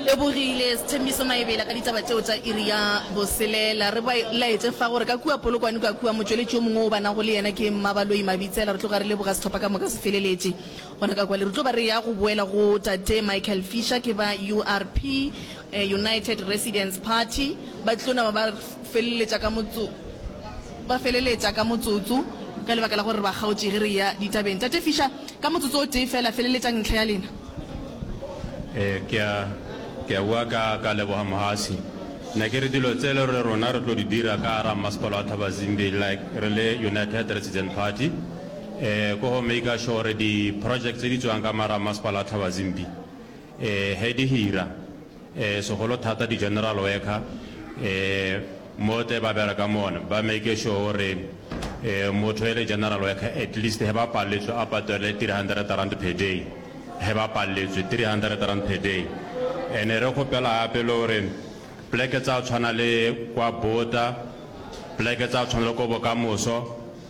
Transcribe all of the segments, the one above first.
Lebogile Sethembiso Maebela ka ditaba tšeo tša iri ya boselela. Re ba laetše fa gore ka kua Polokwane kua kua motšweletši yo mongwe o ba nago le yena ke Mmabaloi Mabitsela. Re tlo ga re leboga sehlopha ka moka se feleletše gona ka kwale. Re tlo ba re ya go boela go Tate Michael Fisher ke ba URP. United Residents Party ba tlo nama ba feleletša ka motso, ba feleletša ka motsotso ka lebaka la gore ba kgaotše ge re eya ditabeng. Tate Fischer, ka motsotso o tee feela, feleletšang ntlha ya lena. Ee, ke a, ke a bua ka, ka leboga Mohasi. Ne ke re dilo tse le gore rona re tlo di dira ka gare ga Mmasepala wa Thabazimbi like re le United Resident Party, ee, ke go maker sure gore di projects tse di tswang ka mo gare ga Mmasepala wa Thabazimbi, Ee, ge di hira, ee, segolo thata di-general worker, ee, mo tle ba bere ka mona, ba make sure gore, ee, motho e le general worker, at least ge ba palletswe a patelwe three hundred rand per day, ge ba palletswe three hundred rand per day. And-e re kgopela gape le gore pleke tsa tshwana le kwa Botha, pleke tsa tshwana le ko Bokamoso,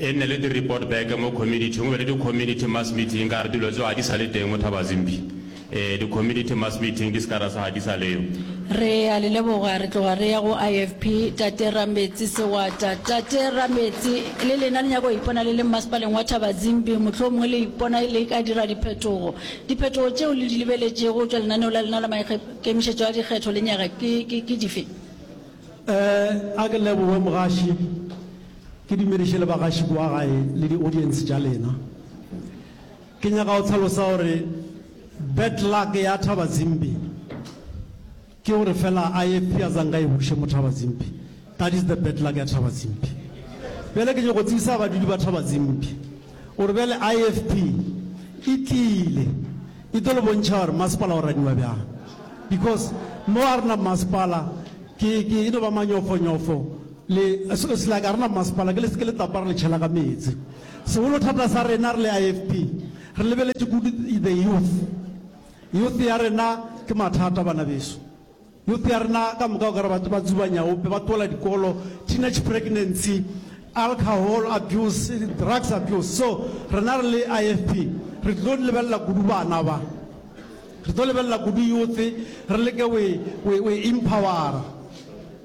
E nne le di report back mo community go be le di community mass meeting ka re dilo tso ga di sa le teng mo Thabazimbi e di community mass meeting di ska ra sa ga di sa leyo. Re a le leboga re tloga re ya go IFP tate Rametsi Sewata. Tate Rametsi le lena le nyaka go ipona le le mmasepaleng wa Thabazimbi mohlomongwe le ipona le ka dira diphetogo. Diphetogo tšeo le di lebeletšego go tšwa lenaneo la lena la maikemišetšo a dikgetho le nyaga ke dife? A ke leboge mogaši. Ke dumediše le bagaši kua gae le di audience tša lena. Ke nyaka go hlalosa gore bad luck ya Thaba Zimbi ke gore fela a ye Piazanga e buše mo Thaba Zimbi. That is the bad luck ya Thaba Zimbi. Bjale ke nyoko tsebisa badudi ba Thaba Zimbi gore bjale IFP e tlile e tlo le bontšha gore masepala o raniwa bjang because mo a rena masepala ke ke e no ba manyofonyofo. Le, se, se like a rena bomasepala, ke le seke le tapa re le tšhela ka meetse. Segolo thata sa rena re le IFP, re lebeletše kudu the youth. Youth ya rena ke mathata, bana beso. Youth ya rena ka moka o ka re ba, ba tsuba nyaope, ba tloela dikolo, teenage pregnancy, alcohol abuse, drugs abuse. So, rena re le IFP, re tlilo lebelela kudu bana ba. Re tlo lebelela kudu youth, re leke go e, go e, go e empowera.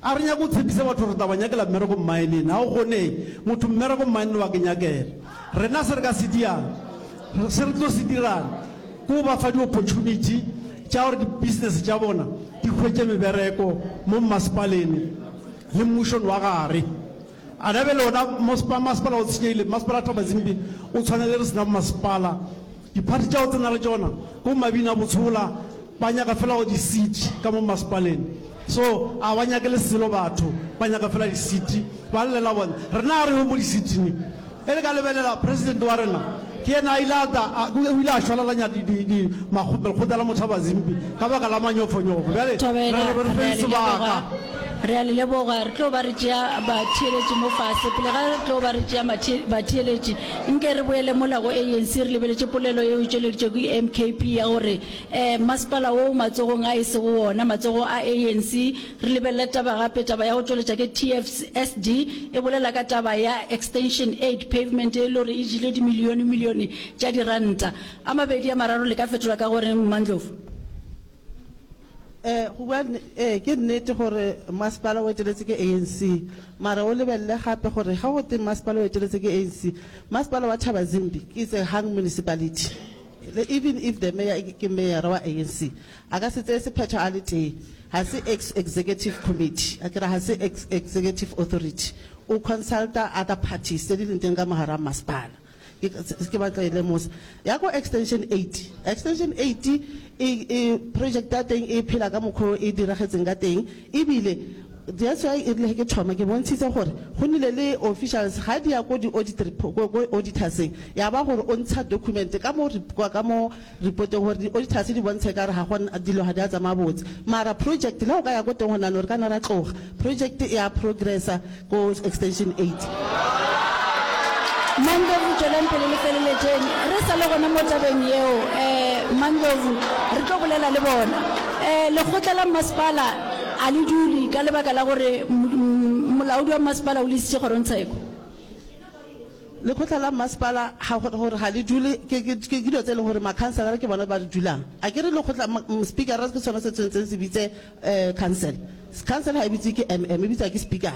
A re nyake go tshepiša batho gore re tla ba nyakela mmereko mmaenene. Ga go kgonege. Motho mmereko mmaenene wa ke nyakela. Rena se re ka se diang, se re tlo se dirang, ke go ba fa di-opportunity tša gore di-business tša bona di hwetše mebereko mo mmasepalene le mmušong wa gare. A na bjale wona maspa, masepala o tshenyegile, mmasepala Thabazimbi o tshwana le re sena bomasepala. Diphathi tša go tsena le tšona ke bo mabina botshola, ba nyaka fela go di seat ka mo mmasepaleng. So a ba nyake le selo batho, ba nyaka fela di seat. Ba llela bona, rena a re yong mo di seat-ing, Ge le ka lebelela, President wa rena ke yena a ile a tla, a, o ile a šwalalanya di, di, di, makgo, lekgotla la mothaba Zimpi ka baka la manyofonyofo. Bjale re, re, re feng sebaka. Re a le leboga. Re tlo ba re tšea batheeletši mo fase. Pele ga re tlo ba re tšea batheeletši, nke re boele mola go ANC re lebeletše polelo yeo e tšweleditšwego ke MKP ya gore um masepala wo o matsogong a e sego wona, matsogo a ANC, Re lebelele taba gape, taba ya go tšweletša ke TFSD e bolela ka taba ya Extension Aid Pavement ye e le gore e jile dimilione milione tša diranta. A mabedi a mararo le ka fetola ka go reng, Mmandlovu? Ee, go bua nne, ee, ke nnete gore masepala o eteletše ke ANC. Mara o lebelele gape gore ge go tee masepala o eteletše ke ANC, masepala wa Thabazimbi ke Itsehang Municipality. Le even if the mayor ke meyara wa ANC, A ka se tseye sephetho a le tee. Ga se ex executive committee, akere ga se ex executive authority. O consulta other parties tse di leng teng ka mo gare ga mmasepala. Ke, ke batla go e lemosa. Ya ko Extension eight, Extension eight e, e, project ya teng e phela ka mokgwa o e diragetseng ka teng, ebile that's why erile ge ke thoma ke bontshitse gore go nnile le officials ga di ya ko di-audit, ko, ko auditorseng ya ba gore o ntsha document ka mo, ka mo Ripoteng gore di auditors di bontsha ekare ga go dilo ga di a tsamaya botse mara project le go ka ya ko teng go nano re ka na ra tloga project e a progressa ko extension eight. Mandlovu tšweleng pele le feleletšeng re sa le gona mo tabeng yeo um Mandlovu re tlo bolela le bona um lekgotla la mmasepala a le dule ka lebaka la gore molaodi wa mmasepala o le isitše kgorongtsheko Lekgotla la Mmasepala ga go gore ga le dule, ke ke dilo tse e leng gore makhanselara ke bona ba di dulang. A ke re lekgotla Speaker ke sone se tshwanetseng se bitse council. Council ga e bitsiwe ke MM, e bitsiwa ke Speaker.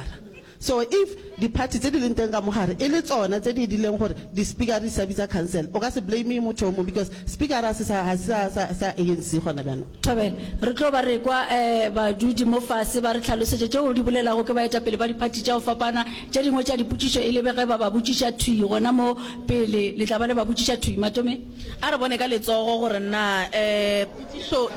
So if di party tse di leng teng ka mo gare e le tsone tse di dirileng gore di Speaker di se ka bitsa council, o ka se blame motho yo mongwe because Speaker ga se sa ANC gona byanong. Thobela. Re tlo ba re kwa badudi mo fase ba re hlalosetša tšeo di bolelago ke baetapele ba diphathi tša go fapana. Tše dingwe tša dipotšišo e lebe ge ba ba botšiša thwii gona mo pele le tla ba le ba botšiša thwii. Matomeng. A re bone ka letsogo gore na potšišo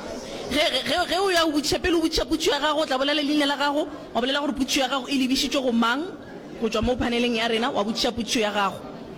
ge, ge, ge o ya go botšiša, pele o botšiša potšio ya gago, o tla bolela leina la gago, wa bolela gore potšio ya gago e lebišitšwe go mang, go tšwa mo phaneleng ya rena, wa botšiša potšio ya gago.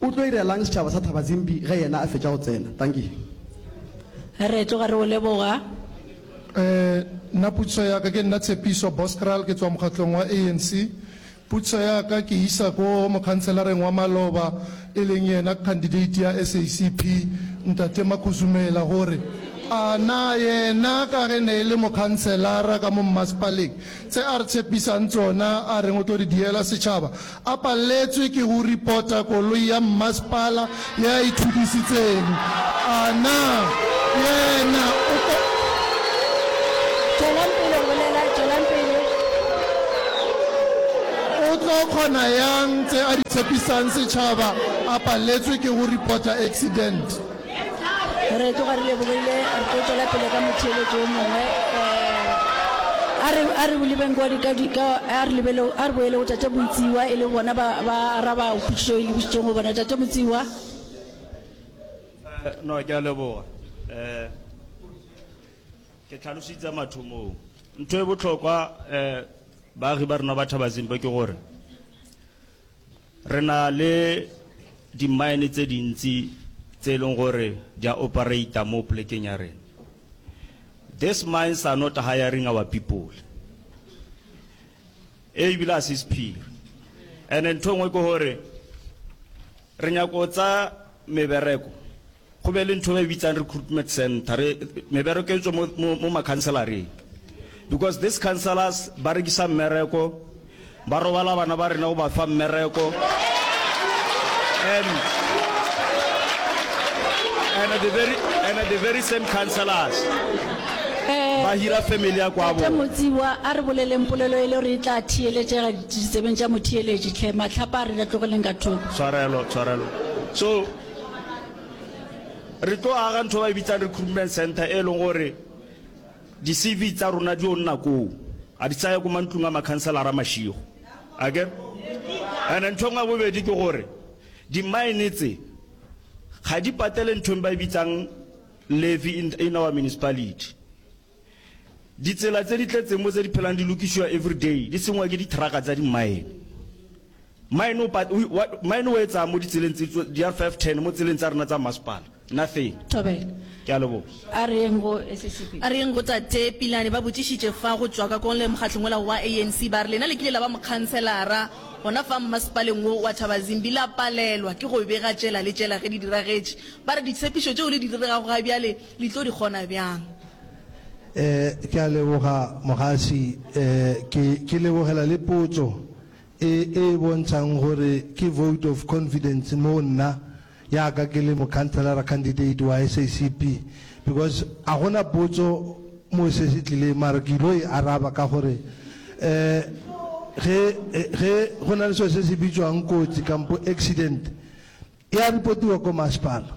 O tlo irela'ng setšhaba sa Thabazimbi ge yena a fetša go tsena? Dankie. Re tloga re o leboga. Eeh nna putsiso ya ka ke nna Tshepiso Boskral ke tswa mokgatlong wa ANC. Putsiso ya ka ke isa ko mokhanselareng wa maloba e leng yena candidate ya SACP Ntate Makhuzumela gore a na yena ka ge ne e le mokhanselara ka mo mmasepaleng tse a re tshepisang tsona a reng o tlo di diela setšhaba A paletswe ke go ripota koloi ya mmasepala ye a e thudisitseng. A na yena o ka. Tšwelang pele go bolela, tšwelang pele. O tlo kgona yang tse a di tshepisang setšhaba a paletswe ke go ripota accident? re tloga re lebogile re tlo tswela pele ka motheeletso o mongwe eh, a re a re lebeng kwa dika dika a re lebele a re boele go tate motsiwa e le bona ba ba araba potšišo e lebisitsweng go bona tate motsiwa Eh, no ke a leboga um ke tlhalositse mathomong ntho e botlhokwa um baagi ba rena ba thaba zimbe ke gore Re na le di-mine tse dintsi tse e leng gore di a operate mo polekeng ya rena. These mines are not hiring our people. E ebile a se sephiri. And ntho e nngwe ke gore re nyaka go tsaya mebereko Go be le ntho e bitsang recruitment center re mebereko e tswe mo mo mo makhanselareng because these councillors ba rekisa mmereko ba robala bana ba rena go ba fa mmereko and and the very and the very same councillors Eh, ba hira family ya kwa Tate bo Motsiwa a re boleleng polelo e le gore e tla theeletšega ditsebeng tša motheeletši tlhe matlhapa a re la tlogeleng ka thoko tshwarelo tshwarelo so re tlo aga ntho ba e bitsang recruitment center e leng gore di-cv tsa rona di o nna koo a di tsaya ko mantlong a makhanselara mašigo ake and ntho e nngwe ya bobedi ke gore di-mine tse ga di patele nthong ba e bitsang levy in our municipality Ditsela tse di tletseng mo tse di phelang di lokišiwa everyday, di sengwa ke dithraka tsa dimmaene. Mmaene o pat, o, wa, mmaene o etsang mo ditseleng tse tso, di R5 10 mo tseleng tsa rena tsa mmasepala? Nothing. Thobela. Ke a leboga. A re yeng go SACP? A re yeng go Tate Pilane? Ba botšišitše fa go tšwa ka kong le mokgahlong wola wa ANC, ba re lena le kile la ba mokhanselara gona fa mmasepaleng wo wa Thabazimbi, la palelwa ke go bega tšela le tšela ge di diragetše. Ba re ditshepišo tšeo le di diregago ga bjale, Le tlo di kgona bjang? Eh, ke a leboga Mogasi. Eh, ke, ke lebogela le potso e, e e bontšhang gore ke vote of confidence moo nna, ya ka ke le mokhanselara candidate wa SACP. Because a go na potso moo se se tlileng, mara ke ilo e araba ka gore, eh, ge, ge go na le selo se se bitšwang kotsi kampo accident, e a repotiwa ko masepala.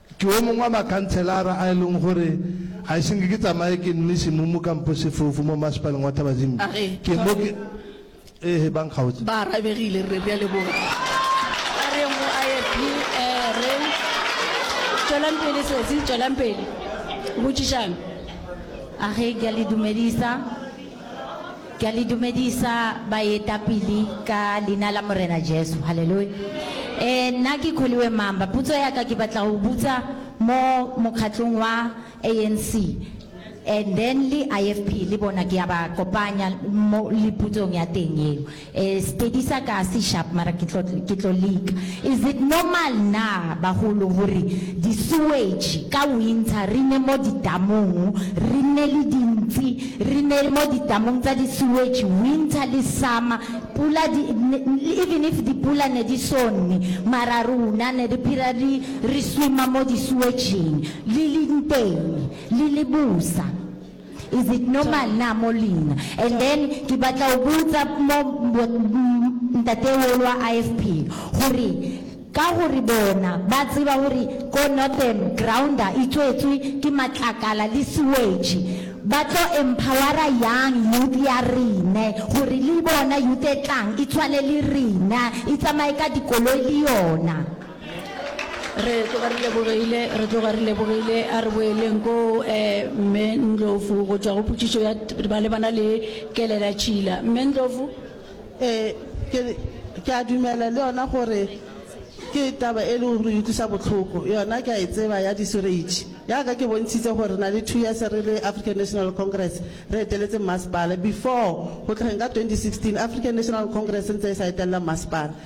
Ke wo mongwe wa makhantshelara a e leng gore ga ise nke ke tsamaye ke nwe semumu kampo sefofu mo Mmasepaleng wa Thabazimbi. A re, Ke mo ke. Ee, ba nkgaotse. Ba arabegile, re re a leboga. Ba re go a ye phi, ee, re. Tšwelang pele, sesi, tšwelang pele. Botšišang. A re, Ke a le dumedisa. Ke a le dumedisa baetapele ka Leina la Morena Jesu. Haleloya. E, nna ke Kholiwe Mamba. Putso ya ka ke batla go butsa mo mokgatlong wa ANC and then le IFP le bona ke ya ba kopanya mo le putsong ya teng yeo. Eh Sepedi sa ka se sharp mara ke tlo ke tlo leka. Is it normal na bagolo gore di sewage ka winter re ne mo di damong re nne le dintsi re ne mo di damong tsa di sewage winter le summer pula di even if di pula ne di so nne mara rona ne re phira re re swimmer mo di sewageng le leng teng le le bosa. Is it normal na mo leina? And then ke batla o botsa mo Ntate wo wa IFP gore ka gore bona ba tseba gore ko Northern grounder e tswetswe ke matlakala le sewage ba tlo empowera yang youth ya rena gore le bona youth e tlang e tshwane le rena e tsamaye ka dikoloi le yona. re tloga re lebogile re tloga re lebogile a re boeleng ko um mme ndlovu go tšwa go potšišo ya ba le bana le kelela tšhila mme ndlovu um ke a dumela le yona gore ke taba e le gore utlwisa botlhoko yona ke a e tseba ya disoreitšhi yaka ke bontšhitse gore re na le two years re le african national congress re eteletse mmasepala before go tlheng ka 2016 african national congress ntse e sa etelela mmasepala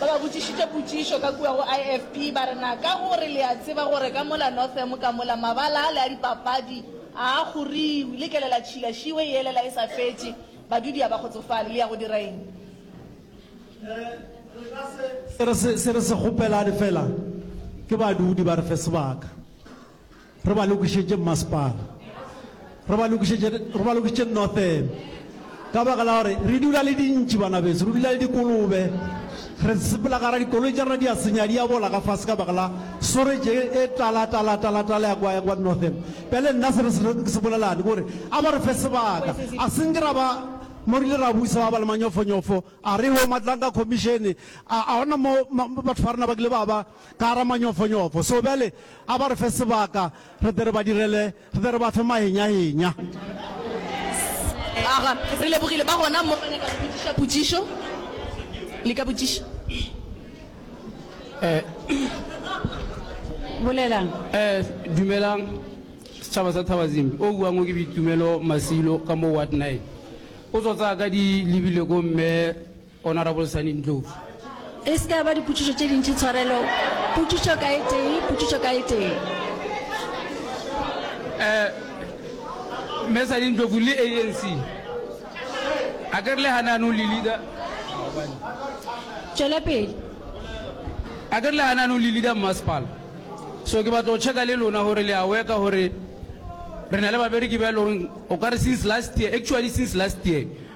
Ba ba botšišitše potšišo ka kua go IFP, ba re, Na ka gore le a tseba gore ka mola Northam ka mola mabala ale a dipapadi a a kgoriwi, le kele la tšhila šiwe yele la e sa fetše, badudi a ba kgotsofale, le ya go dira eng? Se re se kgopelane fela ke badudi ba re fe sebaka. Re ba lokišetše mmasepala. Re ba lokišetše, re ba lokišetše Northern. Ka baka la gore re dula le dintši, bana beso, re dula le dikolobe. Re sepela ka ra dikoloi tša rena di a senya, di a bola ka fase ka baka la soreje e tala, tala, tala, tala ya kwa, ya kwa Northern. Bjale nna se re se ke se bolelane ke gore a ba re fe sebaka, a se nke ra ba mo re ile ra buisa ba ba le manyofonyofo, a re ho Matlanka Commission, a, a gona mo batho ba rena ba kile ba ba. ka gare manyofonyofo. So bjale a ba re fe sebaka, re tle re ba direle, re tle re ba fe mahenyahenya. Aga, re lebogile. Ba gona mo ba nyaka go botšiša potšišo? Le ka botšiša. Bolelang. Dumelang, setšhaba sa Thabazimbi. O buang o ke Boitumelo Masilo ka mo Ward Nine. O tso tsaya ka di lebile ko Mme Honourable Sunny Ndlovu. E se ke ya ba dipotšišo tše dintši, tshwarelo. Potšišo ka e tee, potšišo ka e tee. Um, Mme Sunny Ndlovu le ANC, a ke re le gane anong le leader, Tšwela pele. a ke re le gane anong le leader mmasepala, so ke batla go checka le lona gore le a worka gore re na le babereki ba e le goreng o ka re since last year, actually since last year,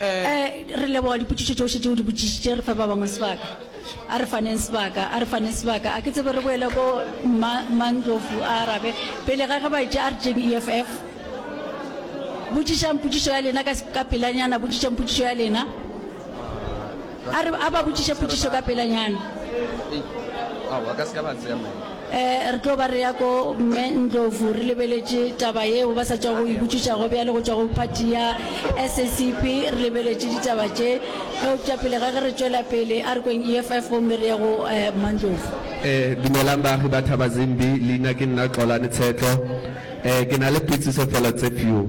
Re leboga dipotšišo tšohle tše o di botšišitše. Re fe ba bangwe sebaka. A re faneng sebaka, a re faneng sebaka. A ke tsebe re boele ko Mma, Mma Ndlovu a arabe. Pele ga ge ba etše, a re tšeng EFF. Botšišang potšišo ya lena ka, ka pelanyana, botšišang potšišo ya lena. A re a ba botšiše potšišo ka pelanyana. Ee, re tlo ba re ya ko Mme Ndlovu, re lebeletše taba yeo ba sa tšwago go e botšiša go bjale go tšwa go phathi ya SACP. Re lebeletše ditaba tše. Eupša pele ga ge re tšwela pele, a re kweng EFF gomme re ye go Mmandlovu. Ee, dumelang baagi ba Thabazimbi. Leina ke nna Xolani Tshetlo. Ee, ke na le putšiso fela tse few.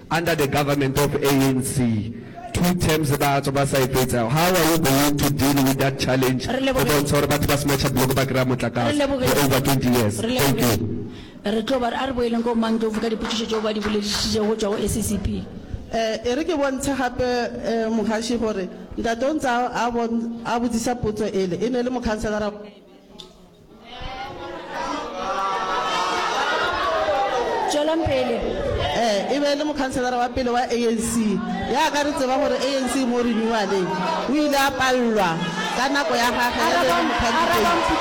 Under the government of ANC two terms ba tswa ba sa e fetsa, how are you going to deal with that challenge Re go leboge. bontsha gore batho ba smatšha block ba kry-a Re motlakase leboge. for over 20 years? Re Thank leboge. you. Re tlo ba re a re boeleng ko Mangtlovu ka dipotšišo tšeo ba di boledišitšego go tšwa go SACP. Eh, e re ke bontshe gape eh, Mogaši gore ntate o ntse a, a, bon, a botsisa potso ele, e ne le mokhanselara wa Kaibela. Tšwelang pele. Ee, e be e le mokhanselara wa pele wa ANC. Ya ka re tseba gore ANC e mo renewaleng, o ile a pallwa ka nako ya gagwe ya be e le mokhandideiti.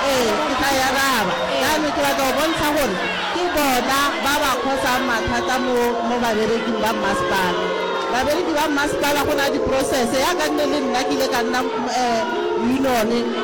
Ee, ke tla e araba. Bjale ke batla go bontsha gore ke bona ba ba khosang mathata mo, mo babereking ba mmasepala. Babereki ba mmasepala go na le diprosese. Ya ka nne le nna ke ile ka nna, um, union.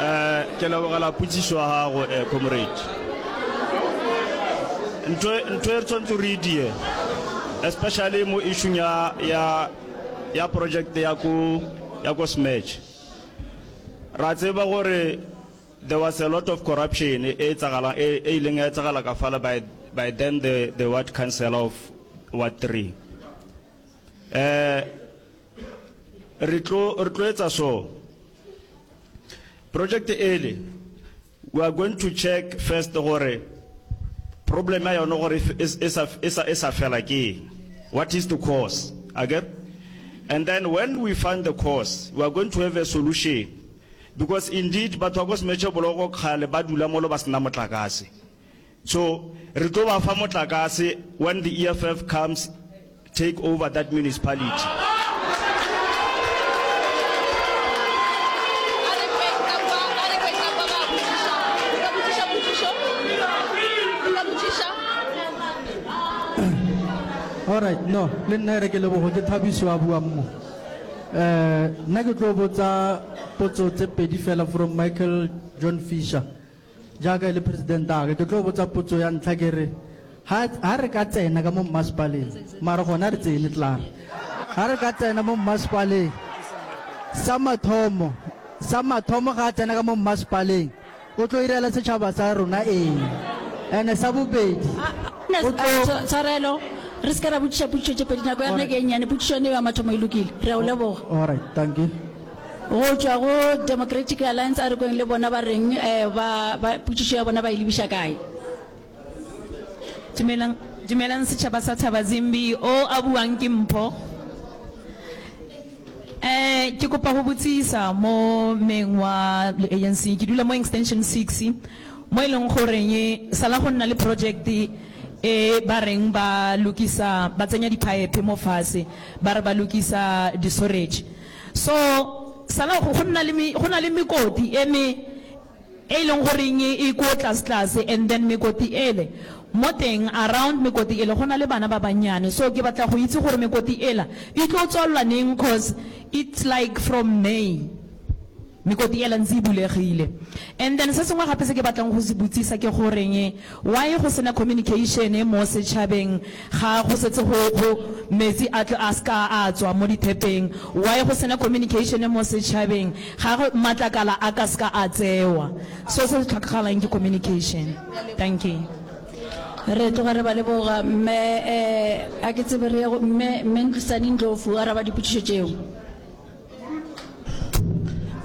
Eh, ke lebogela potsiso ya gago eh, comrade ntho ntho e re tshwanetse re die especially mo issue ya ya ya project ya ko ya ko smatch ra tseba gore there was a lot of corruption e e tsagalang e e ileng ya tsagala ka fala by by then the the ward council of ward 3 eh re tlo re tlo etsa so project ele we are going to check first gore problem ya yone gore e sa fela ke what is the cause okay and then when we find the cause we are going to have a solution because indeed batho ba ko semetšhe boloko kgale ba dula molo ba sena motlakase So re tlo ba fa motlakase when the EFF comes take over that municipality. Alright, no, le nna re ke lebogo ke Thabiso a buang mo. Eh, nna ke tlo botsa potso tse pedi fela from Michael John Fisher. Jaaka e le president'age, ke tlo botsa potso ya ntlha ke re, ha, ha re ka tsena ka mo mmasepaleng, mara gona ha re tsene klaar, ha re ka tsena mo mmasepaleng, sa mathomo, sa mathomo ga a tsena ka mo mmasepaleng, o tlo irela setšhaba sa rona eng? And-e sa bobedi, o tlo. Tsh-, Tshwarelo, re se ke ra botšiša potšišo tše pedi, nako ya rena ke e nnyane, potšišo yona eo ya mathomo e lokile. Re a o leboga. All right, dankie. Go tšwa go Democratic Alliance a re kweng le bona ba reng ba ba potšišo ya bona ba e lebiša kae. Dumelang dumelang setšhaba sa Thabazimbi o a buang ke Mpho. Eh ke kopa ho botsisa mo meng wa le ANC ke dula mo extension six mo e leng goreng sala go nna le project e ba reng ba lokisa ba tsenya di pipe mo fase ba re ba lokisa di sorage. So, sala go, go nna le me, go na le mekoti e me, e leng goreng e, e ko tlasetlase, and then mekoti ele, mo teng, around mekoti ele, go na le bana ba bannyane. So, ke batla go itse gore mekoti ela e tlo tswalelwa neng, cos it's like from May. Mekoti yela ntse e bulegile. And then se sengwe gape se ke batlang go se botsisa ke goreng why go sena communication mo setšhabeng ga go setse go go metsi a tlo a ska a tswa mo dithepeng? Why go sena communication mo setšhabeng ga go matlakala a ka ska a tsewa? So se se tlhokagalang ke communication. Dankie. Re tloga re ba leboga mme eh, a ke tsebe re ye go mme, Mme Ntlisani Ndlovu o araba dipotšišo tšeo.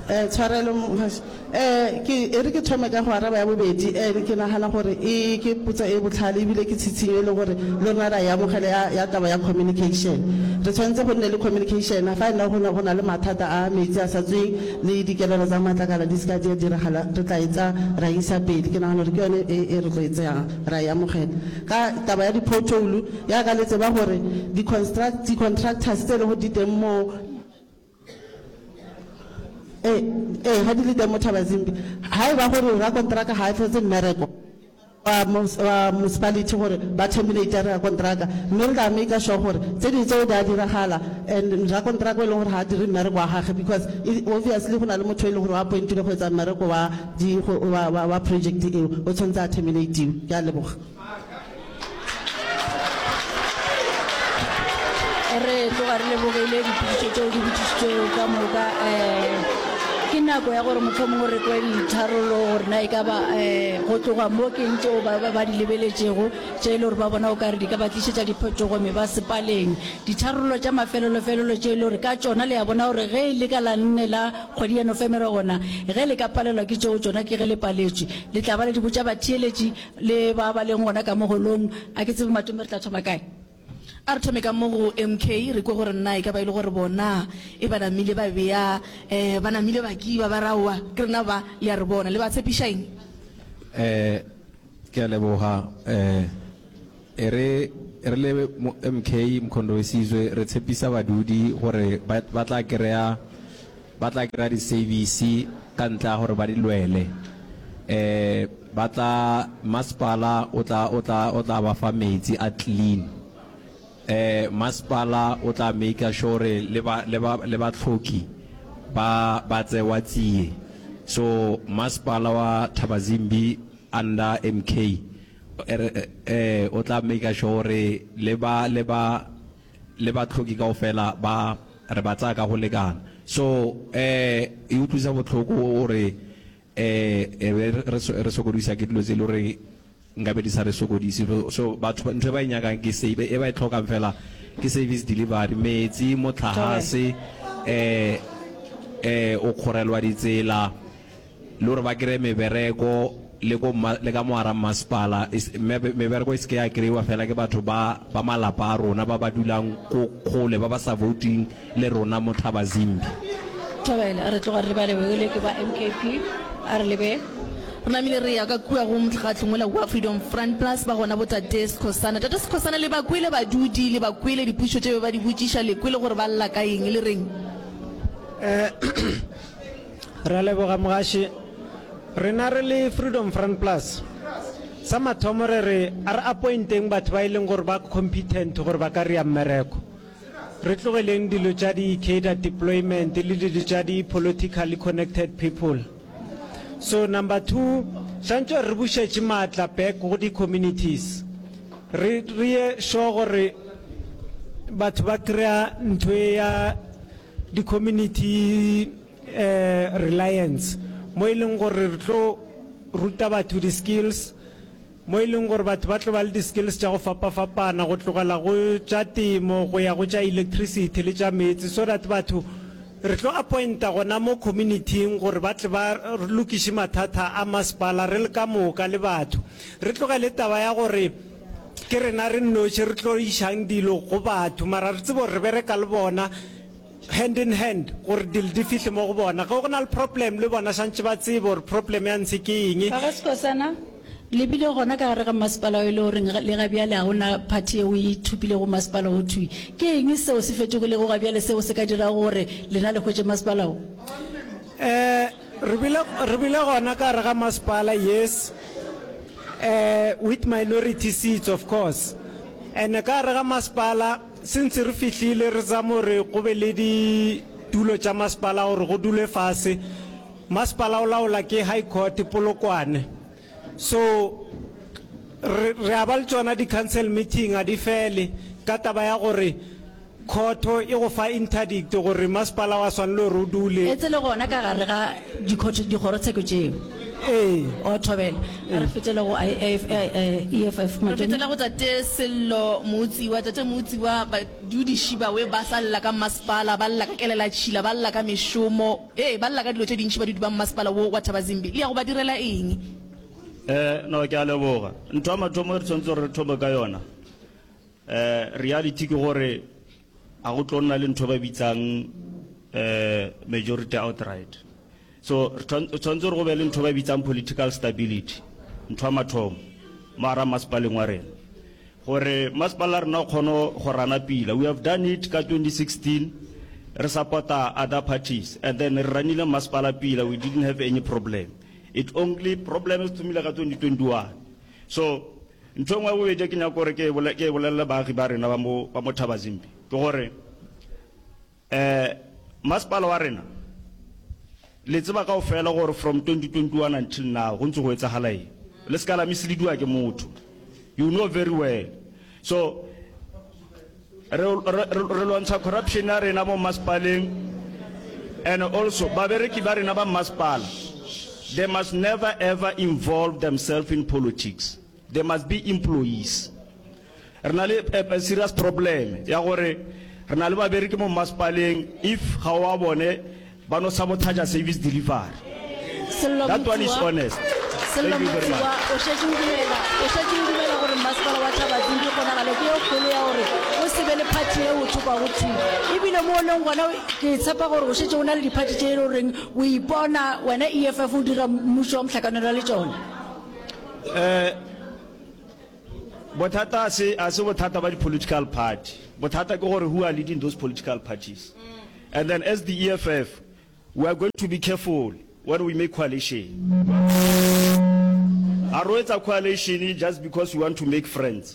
Eh, tshwarelo mohasi eh ke e re ke thome ka go araba ya bobedi eh ke nagana gore e ke putsa e botlhale ebile ke tshitshinyo e le gore le rona ra e amogela ya, ya taba ya communication re tshwanetse go nne le communication fa e nna go ne go na le mathata a metsi a sa tsweng le dikelelo tsa matlakala di seka di a diragala re tla e tsa ra isa pele ke nagana gore ke yone e e re tlo e tseyang ra e amogela ka taba ya di-pothole ya ka le tseba gore di-construct di-contractors tse e le go di teng moo ee ee ga di le teng mo thabazimbi ga e ba gore rakontraka ga a tlhotse mmereko wa mus- wa municipality gore ba terminate rakontraka mme re tla make sure gore tse dingwe tseo di a diragala and rakontraka o e leng gore ga a dire mmereko wa gage because e- obviously go na le motho e leng gore wa appointile go etsa mmereko wa di- go- wa- wa- wa project eo o tshwanetse a terminatiwe ke a leboga re tloga re lebogile diphidišo tseo di botsišitsweo ka moka um ke nako ya gore motlho mongwe re kwe ditharolo gore na e ka ba um go tloga mo ke ntse o ba di lebeletšego tše e le gore ba bona o kare di ka ba tlišetša diphetogo me ba sepaleng ditharolo tša mafelolofelelo tše e le gore ka tšona le ya bona gore ge e le ka la nne la kgwedi ya nofemere gona ge le ka palelwa ke tšeo tšona ke ge le paletšwe le tla ba le di botša batheeletši Le ba ba leng gona ka mo holong, a ke tsebe matome re tla thoma kae. A re thome ka mo go MK, re kwe gore na e ka ba e le gore bona e ba namile ba bea, eh, ba namile ba kiba, ba re aowa, ke rena ba, le a re bona. Le ba tshepiša eng? Eh, ke a leboga, eh. E re re le MK Mkhondowesizwe re tshepisa badudi gore ba tla krea ba tla krea disevisi ka ntlea gore ba di lwele. E ba tla masepala o tla o tla o tla ba fa metsi a clean. E masepala o tla maker sure gore le ba le ba le ba tlhoki ba ba tsewa tsie. So masepala wa Thabazimbi under MK Ere Ee, o tla maker sure gore le ba, le ba, le bahloki kaofela ba, re ba tsaya ka go lekana. So, ee, e utlwisa bohloko gore, ee, e be re, re sokodisa ke dilo tse e le goreng nkabe di sa re sokodise. So, batho ntho e ba e nyakang ke se, e ba e tlhokang fela ke service delivery, metsi, motlagase, ee, ee, o kgorelwa ditsela. Le gore ba kry-e mebereko le ko mma, le ka mo gara mmasepala, e se, me, mebereko e se ke ya kry-iwa fela ke batho ba, ba malapa a rona ba ba dulang ko kgole, ba ba sa vouting le rona mo Thabazimbi. Thabela, a re tloga re lebale gore le ke ba MKP, a re lebe. Re namile re eya ka kua go mokgatlo mola wa Freedom Front, plus ba gona bo Tate Skhosana. Tate Skhosana, le ba kwele badudi, le ba kwele dipušo tše be ba di botšiša, le kwele gore ba lla ka eng, le reng? Eh, Re a leboga Mogaši. Rena re le Freedom Front Plus, sa mathomo re re a re appointeng batho ba e leng gore ba competent gore ba ka rea mmereko. Re tlogeleng dilo tša di-cadre deployment le dilo tša di-politically connected people. So number two, swantšwe re bušetše maatla back go di-communities. Re re ye sure gore batho ba kry-a ntho e ya di community um reliance mo e leng gore re tlo ruta batho di skills mo e leng gore batho ba tlo ba le di skills tša go fapa-fapana go tlogela go tša temo go ya go tša electricity le tša meetse so that batho re tlo appointa gona mo communityng gore ba tle ba lokiše mathata a masepala re le ka moka le batho re tlogele taba ya gore Ke rena re nnoši re tlo išang dilo go batho, mara re tsebe gore re bereka le bona hand in hand gore dilo di fihle mo go bona. Ge go na le problem le bona santše ba tsebe gore problem ya ntshe ke eng. Ga go sekosana, le bile gona ka gare ga mmasepala o e le goreng le ga bjale ga go na party yeo e ithopilego go masepala wo thwi. Ke eng seo se fetogilego ga bjale seo se ka dirago gore lena le hwetše masepala wo? Re bile, re bile gona ka gare ga masepala, yes, um with minority seats of course, and ka gare ga masepala since re fihlile re zama gore go be le ditulo tša masepala gore go dulwe fase. Masepala o laola ke High Court Polokwane. So re re a ba le tsona di council meeting a di fele ka taba ya gore khotho e go fa interdict gore masepala wa swanelo re o dule etse le gona ka gare ga dikhotho dikgorotsheko tšeo ee o thobela a re fetele go IF, eh, eh, eff re matšomo fetela go tate sello mootsiwa tate mootsiwa badudiši bawe ba sa lla ka mmasepala ba lla ka kelela tšhila ba lla ka mešomo Ee, ba lla ka dilo tše dintši badudi ba mmasepala wo wa Thabazimbi. Le ya go ba direla eng? Ee, no, ke a leboga. Ntho ya mathomo e re tshwanetse gore re thome ka yona, ee, reality ke gore ga go tlo nna le ntho e ba bitsang, ee, majority outright. So, re tshwanetse gore go be le ntho e ba bitsang political stability, ntho ya mathomo mo gare ga mmasepaleng wa rena. Gore masepala wa rena o kgone go rana pila, we have done it ka 2016 re supporta other parties and then re ranile masepala pila, we didn't have any problem. It only problem e thomile ka 2021. So ntho e nngwe ya bobedi e ke nyaka gore ke e bolelele baagi ba rena ba mo Thabazimbi ke gore, Eh, masepala wa rena, le tseba kao fela gore from 2021 until now, go ntse go etsagala eng. Le se ka la mislediwa ke motho. You know very well. So, re, re, re, re lwantsha corruption ya rena mo masepaleng, and also, babereki ba rena ba masepala, they must never ever involve themselves in politics. There must be employees. Re na le a, a serious problem ya gore re na le babereki mo mmasepaleng if ga o a bone ba no sabotaja service delivery. Sello That one is Motsuwa- honest. Sello Thank you very much. Motsuwa, o šetše o dumela o šetše o dumela gore mmasepala wa thabading ke kgonagalo ke e kgolo ya gore o se be le phathi e o thokwago thwi ebile mo o leng gona o- ke tshepa gore o šetše o na le diphathi tše e le goreng o ipona wena eff o dira mmušo wa mohlakanelo le tšona Eh, bothata se a se bothata ba di-political party bothata ke gore who are leading those political parties and then as the eff we are going to be careful when we make coalition ga ro etsa coalition just because we want to make friends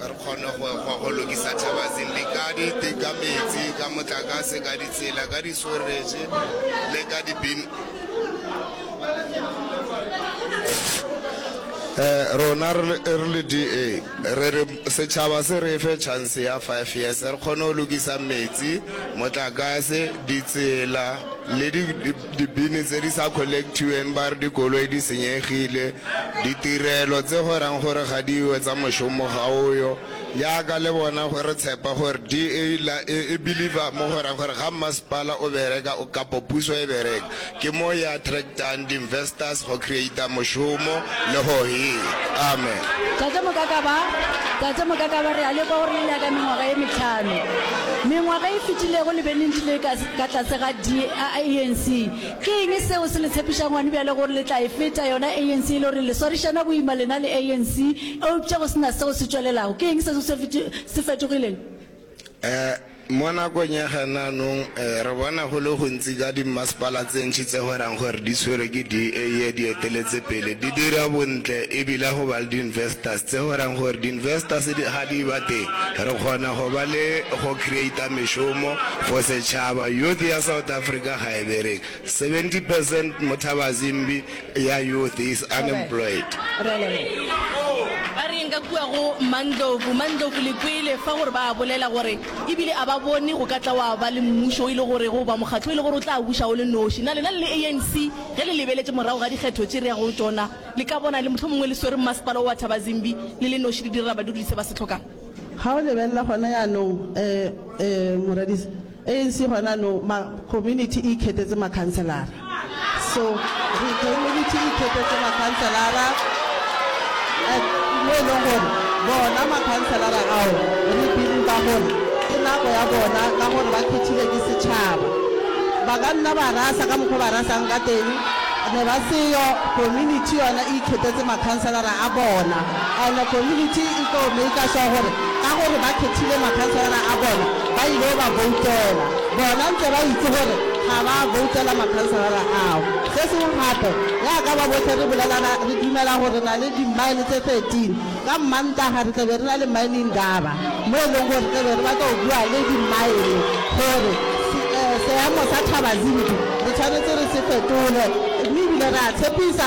Re kgone go ekgwa go lokisa Thabazimbi ka dite, ka metsi, ka motlakase, ka ditsela, ka disweretše le ka dipin. Rona re le, re le DA re re setšhaba se re fe chance ya five years re kgone go lokisa metsi, motlakase, ditsela le di, Dibini tse di sa collectiweng ba re dikoloi di senyegile, ditirelo tse go reng gore ga di yo tsa mošomo ga o yo, jaaka le bona go re tshepa gore DA la e e believer mo go reng gore ga mmasepala o bereka kapo puso e bereka ke mo e attractang di investors go creator mošomo le go hira. Amen. Tate Mokakaba, Tate Mokakaba re a lekwa gore le nyaka mengwaga e metlhano. Mengwaga e fetilego le be le ntšhile ka. ka tlase ga di a ANC. Ke eng seo se le tshepišang gone bjale gore le tla e feta yona ANC e le gore le swarišana boima lena le ANC eupša go se na seo se tšwelelago? Ke eng seo se se fetogileng? Um Mo nakong ya ganaanong um re bona go le gontsi ka dimmasepala tse ntši tse go rang gore di tshwerwe ke DA ye di eteletse pele di dira bontle e bile go ba le di-investors tse go rang gore di-investors di ga di ba teng re kgona go ba le go creator mešomo for setšhaba youth ya South Africa ga e bereke 70 percent Mothabazimbi ya youth is unemployed. Ba re eng ka kua go Mandlovu? Mandlovu le kwele fa gore ba a bolela gore ebile a ba bone go ka tla wa ba le mmušo o ile gore go ba mokgatlo o ile gore o tla buša o le noši. Na lena le le ANC ge le lebeletše morago ga dikgetho tše re yago go tšona le ka bona le mohlomongwe le swere mmasepala wo wa Thabazimbi le le noši le direla badudise ba se hlokang? Ga o lebelela gona yanong, e, e, moradisa, ANC gona yanong, ma, community e ikhetetse makhanselara. So, re, community e ikhetetse makhanselara, and mo e leng gore bona makhanselara ao, re believe-a gore ke nako ya bona ka gore ba khethilwe ke setšhaba. Ba ka nna ba rasa ka mokgwa o ba rasang ka teng, ne ba seyo, community yona e ikhetetse makhanselara a bona. And community e tlo maker sure gore ka gore ba khethile makhanselara a bona ba ileo ba voutela bona ntse ba itse gore ga ba voutela makhanselara ao. Se sengwe gape yaka ba bohle re bolelana re dumela gore re na le di mine tse 13 ka Mmantaga re tlabe re na le mine Indaba mo e leng gore re tlabe re batla go bua le di mine gore seemo sa Thabazimbi re tshwanetse re se fetole mme ebile re a tshepisa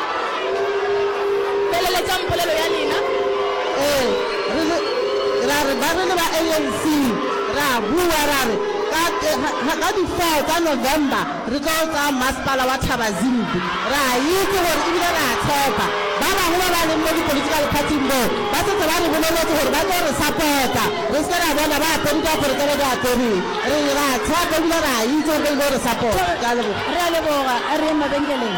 Feleletšang polelo ya lena. Ee, re le, ra re, ba re le ba ANC, ra bua, ra re, ka, ka, ka di four tsa November re tlo tsaya masepala wa Thabazimbi. Ra itse gore, e bile ra tshepa, ba bangwe ba ba leng mo di-political party-ing moo, ba setse ba re boleletse gore ba tlo re support-a, re se ke ra bona ba apere diaparo tse ba di apereng. Re ile ra tshepa e bile ra itse gore ba ile go re support-a. Ke a leboga. Re a leboga. A re yeng mabenkeleng.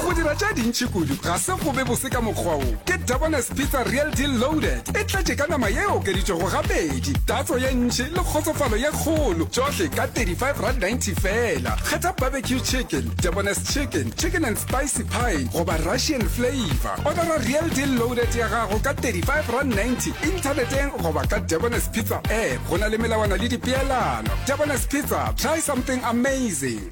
go dira tša dintši kudu ga se go be bose ka mokgwa o ke dabones pizza real deal loaded e tletše ka nama ye okeditšwego gabedi tatso ye ntši le kgotsofalo ye kgolo tšohle ka 35 rand 90 fela kgetha barbecue chicken dabones chicken chicken and spicy pine goba russian flavor odara real deal loaded ya gago ka 35 rand 90 inthaneteng goba ka dabones pizza app go na le melawana le dipeelano dabones pizza Try something amazing.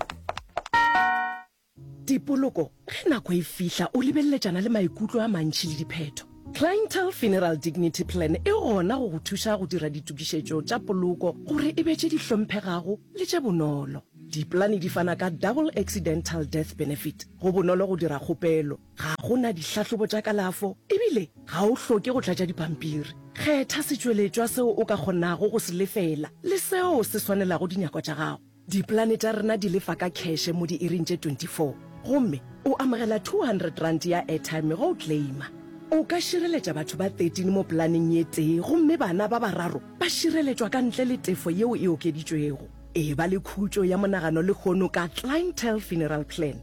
Tipoloko, Ge nako e fihla, o lebeleletšana le maikutlo a mantši le diphetho. Clientele Funeral Dignity Plan e gona go go thuša go dira ditokišetšo tša poloko gore e be tše di hlomphegago le tše bonolo. Dipolane di fana ka Double Accidental Death Benefit. Go bonolo go dira kgopelo. Ga go na dihlahlobo tša kalafo e bile ga o hloke go tlatša dipampiri. Kgetha setšweletšwa seo o ka kgonago go se lefela le seo se swanelago dinyakwa tša gago. Dipolane tša rena di lefa ka kheshe mo diiring tše 24 gomme o amogela R200 ya airtime ge o claima. O ka šireletša batho ba 13 mo polaneng ye tee gomme bana ba bararo ba šireletšwa ka ntle le tefo yeo e okeditšwego. Eba le khutšo ya monagano lehono ka Clientele Funeral Plan.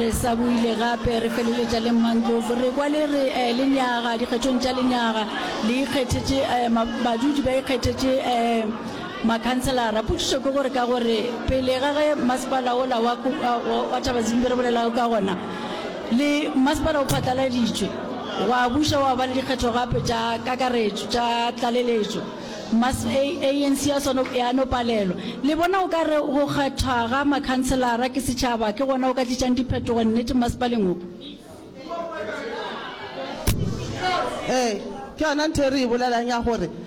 re sa buile gape re feleletša le mmandlovu re kwa le re um lenyaga dikgethong tša lenyaga le ikgethetše um badudi ba ikgethetše um makhanselara potšišo ke gore ka gore pele ga ge masepala ola wa thaba zimbi re bolelago ka gona Le Masepala o phatlaladitšwe, gwa buša gwa ba le dikgetho gape tša kakaretšo tša tlaleletšo. Mas A, ANC ya sona ya no palelwa. Le bona o ka re go kgethwa ga makhanselara ke setšhaba ke gona go ka tlišang diphetogo nnete masepaleng wo? Ee, ke yona ntho e re e bolelang ya gore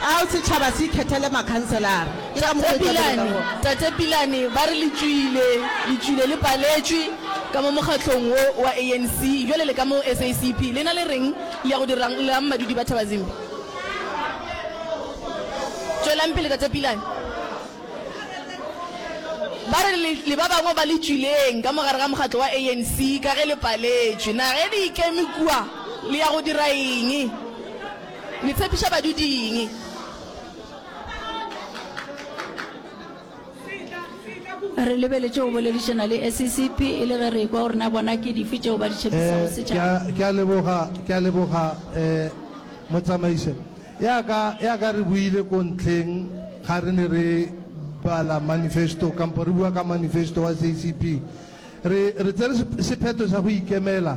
Ao setšhaba se ikhethele makhanselara. Ke ka mokgo e tla bereka Tate Pilane, gona. Tate Pilane ba re le tšwile, le tšwile le paletšwe ka mo mokgahlong wo wa ANC, bjale le ka mo SACP. Lena le reng? Le ya go dira'ng? Le ra'ng madudi ba Thabazimbi? Tšwelang pele Tate Pilane. Ba re le, le ba bangwe ba le tšwileng ka mo gare ga mokgatlo wa ANC ka ge le paletšwe. Na ge le ikeme kua le ya go dira eng? Le tshepiša badudi eng? Re lebeletše go boledišana le SECP e le ge re ekwa gore na bona ke dife tšeo ba di tšhepisago Eh, ke a, setšhaba. ke a leboga, ke a leboga, eh, Motsamaiše. Ya ka, ya ka re boile ko ntlheng ga re ne re bala manifesto, kampo re bua ka manifesto wa SECP. Re, re tsere sep-, sephetho sa go ikemela.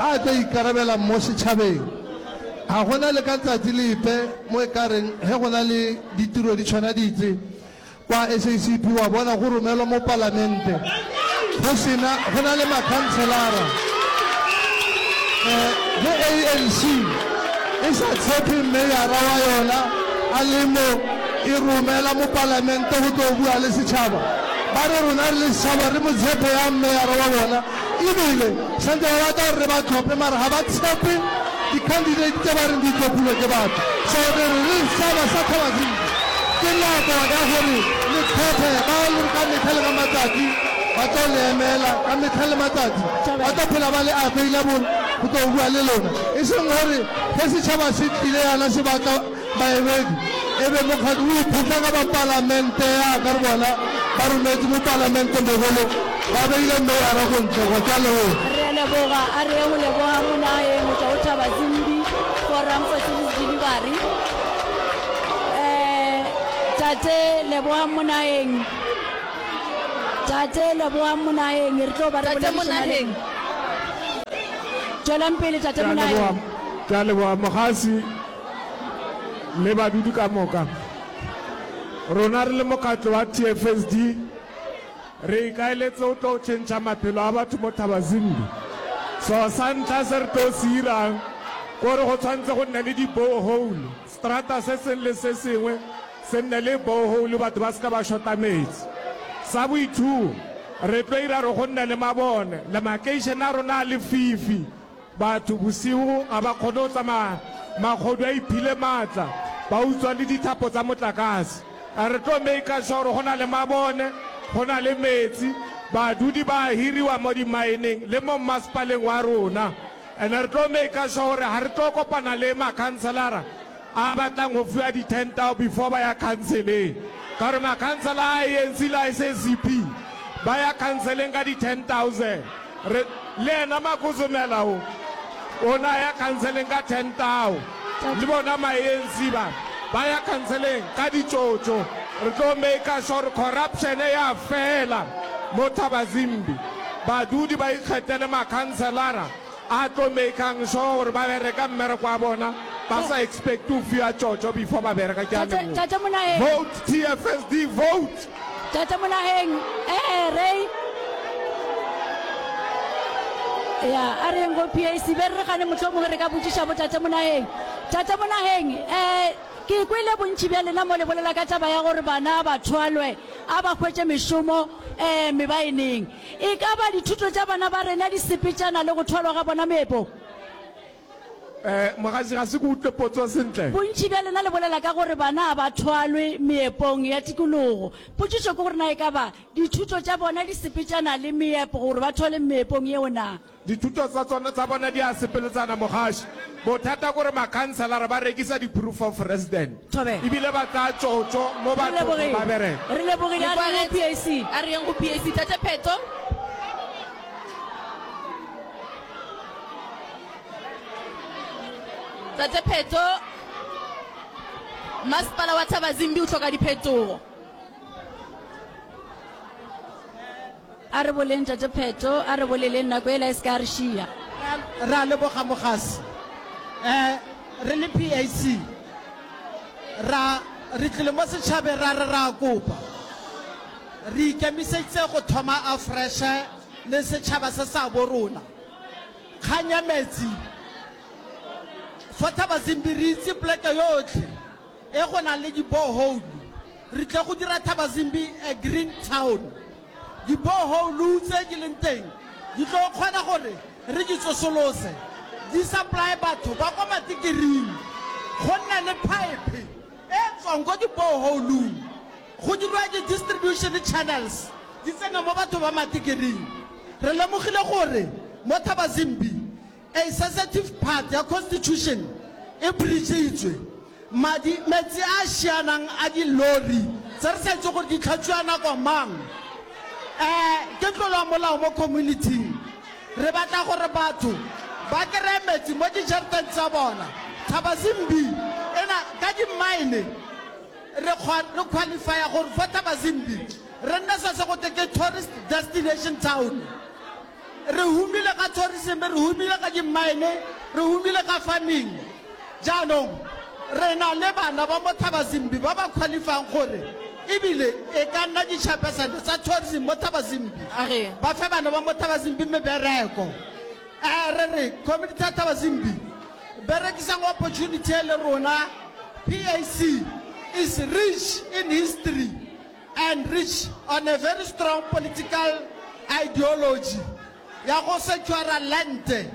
A tlo ikarabela mo setšhabeng. Ga go na le ka tsatsi lepe mo e ka reng ge go na le ditiro di tshwana ditse kwa SACP wa bona go romelwa mo Palamente go sena go na le makhanselara. Ge ANC e sa tshepe meyara wa yona a le mo, e romela mo Palamente go tlo bua le setšhaba. Ba re rona re le setšhaba re mo tshepe yang meyara wa bona? Ebile santse ba batla gore re ba tlhophe mara ga ba tshepe di-candidate tse ba reng di tlhophilwe ke batho. So re re re setšhaba sa Thabazimbi ke nako ya gore le kgethe ba e leng ka metlha le ka matsatsi ba tlo le emela, ka metlha le matsatsi ba tlo phela ba le available go tlo bua le lona. E seng gore ge setšhaba se tlile yana se batla Baebedi, e be mokgatlo o ikhutla ka ba palamente ya ka re bona ba rometše mo palamente mogolo ba beile meyara go ntle go tla le go. Re a leboga, a re go leboga monaye motšwa o thaba zimbi forum for cities delivery eh tate leboga monayeng tate leboga monayeng re tlo ba re tate monayeng tšwelang pele tate monayeng ke a leboga mogasi le badudi ka moka. Rona re le mokgatlo wa TFSD re ikaeletse go tlo tšhentšha maphelo a batho mo Thabazimbi. So sa ntlha se re tlo se irang kore go tshwanetse go nne le di borehole, strata se sengwe le se sengwe se nne le borehole batho ba se ka ba shota metsi. Sa bo two re tlo ira gore go nne le mabone, le makeišene a rona a lefifi. Batho bosigo ga ba kgone go tsamaya, magodu a iphile maatla, ba utswa le dithapo tsa motlakase. A re tlo maker sure gore go na le mabone, go na le meetse, badudi ba a hiriwa mo di-mineng le mo mmasepaleng wa rona. And re tlo maker sure gore ga re tlo kopana le makhanselara a batlang go fiwa di ten tao before ba ya khanseleng ka gore makhansela a ANC le a SACP ba ya khanseleng ka di ten thousand re le ena makozomela o o na ya khanseleng ka ten tao le bona ma ANC ba ba ya khanseleng ka ditšotšo re tlo maker sure corruption ya fela mo thabazimbi badudi ba ikgethele makhanselara A tlo makang sure gore ba bereka mmereko wa bona ba sa expect go fiwa tšotšo before ba bereka. Ke a Tate, leboga. Tate Monaheng. Vote TFSD vote. Tate Monaheng, ee re ya a re yeng go PAC be re gane mohlomongwe re ka botšiša bo Tate Monaheng. Tate Monaheng, eh ke kwele bontši bja lena mo le bolela ka taba ya gore bana ba thwalwe a ba hwetše mešomo eh mebaeneng. E ka ba dithuto tša bana ba rena di sepetšana le go thwalwa ga bona meepong? Eh, mogaši, ga se ke utlwe potso sentle. Bontši bja lena le bolela ka gore bana ga ba thwalwe meepong ya tikologo. Potšišo ke gore na e ka ba dithuto tša bona di sepetšana le meepo gore ba thwalwe meepong yeo na? Dithuto tsa tsona tsa bona di a sepeletsana mogaši. Bothata kore makhanselara ba rekisa di proof of resident Thobela. ebile ba tsaya tšotšo mo Re bathong lebogile. ba bereka. Re lebogile. A re yeng go PAC. A re yeng go PAC. Tate Pheto. Tate Pheto, Masepala wa Thabazimbi o tlhoka diphetogo. A re boleng Tate Pheto, a re boleleng nako yela e se ka ya re šiya. Re a leboga Mogasi. Eh, re le PAC ra, re tlile mo setšhabeng ra re ra kopa, re ikemiseditse go thoma afreshe le setšhaba se sa bo rona. Kgang ya metsi, for Thabazimbi re itse poleke yotlhe. e go na le dibohoulu. Re tle go dira Thabazimbi a green town. Dibohoulu tse di leng teng di tlo kgona gore re di tsosolose, di supply batho ba kwa Matikiring, go nne le pipe e tswang ko dibohoulung go dirwa di-distribution channels di tsene mo batho ba Matikiring. Re lemogile gore mo Thabazimbi A Sensitive part ya Constitution e breach-itšwe. Madi, metsi a a šianang a dilori tse re sa itse gore di tlhatswiwa nako mang, eh, ke tlolo ya molao mo community-ing. Re batla gore batho ba kry-e metsi mo dijareteng tsa bona. Thabazimbi e na ka di-mine, re re qualify-a gore fo Thabazimbi re nne se se gote ke tourist destination town. Re humile ka tourism, re humile ka di-mine, re humile ka farming. Jaanong re na le bana ba mo Thabazimbi ba ba qualifyang gore ebile e ka nna di-chairpersone tsa tourism mo Thabazimbi, A re. ba fe bana ba mo Thabazimbi mebereko. Eh, re re community ya Thabazimbi, berekisang opportunity e le rona, PAC is rich in history. and rich on a very strong political ideology ya go se tšwara land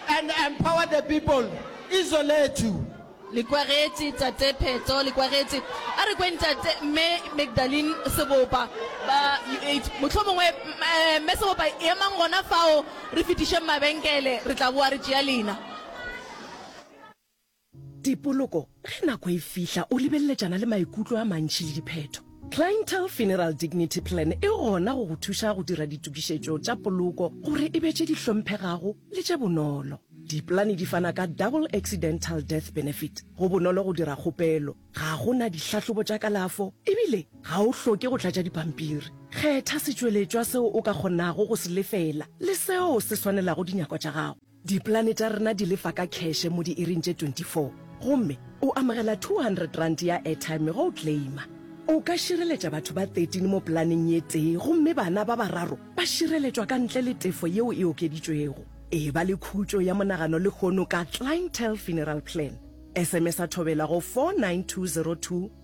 and empower the people izo lethu. Le kwagetše Tate Pheto, le kwagetše. A re kweng Tate, Mme Magdalene Sebopa, ba UH. Mohlomongwe, eh, Mme Sebopa, emang gona fao, re fetišeng mabenkele, re tla boa re tšea lena. Dipoloko, ge nako e fihla o lebeleletšana le maikutlo a mantši le diphetho. Clientele Funeral Dignity Plan e gona go go thuša go dira ditokišetšo tša poloko gore e be tše di hlomphegago le tše bonolo. Dipolane di fana ka Double Accidental Death Benefit, go bonolo go dira kgopelo, ga go na dihlahlobo tša kalafo ebile ga o hloke go tlatša dipampiri. Kgetha setšweletšwa seo o ka kgonago go se lefela le seo se swanelago dinyako tša gago. Dipolane tša rena di lefa ka kheshe mo diiring tše 24 gomme o amogela R200 ya airtime ge o claima. O ka šireletša batho ba 13 mo polaneng ye tee gomme bana ba bararo ba šireletšwa ka ntle le tefo yeo e okeditšwego. Eba le khutšo ya monagano lehono ka Clientele Funeral Plan. SMS-a thobela go 49202.